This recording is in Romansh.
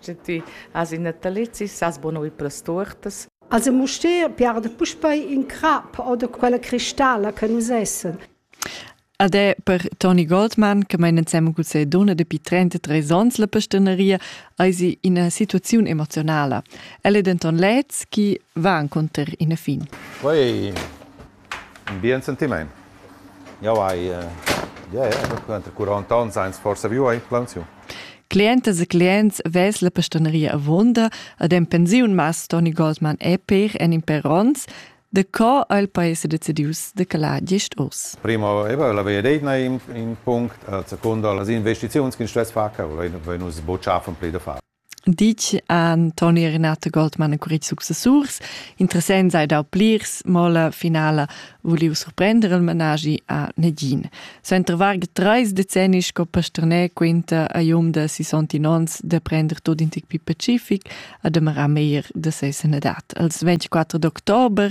Sche ti has in natalizi, sas buca ir per las tuortas. Also Mustér piarda puspei in crap oder quella cristalla che nus essen. Ed è per Toni Goldmann, che meinen ensemen cun seine donna dapi 33 ans la pastaneria, eisi ina situaziun emozionala. El è denton lez chi va inconter ina fin. Poi ün bien sentimaint. Jau hai yeah, entre 40 ans ans forsa viu a implantaziun. Clientas e clients ves la pastaneria avunda ad en pensiun mas Toni Goldman e per en in per ons de co ha il paese decidius de calar gest os? Primo eva la via d'eitna in, in punct, a seconda las investiziuns che in stress fa, che vein nus bocciafen pli da far. Ditg han Toni Renato Goldmann e Curit successurs. Interessant sei da plirs mola finala vuliu surprender il managi a negin. Suenter varga treis decennis sco pasterner quinta a Jum da 69 onns de prender tot in tic più pacific a demarar meir de ses edat. Als 24 d'october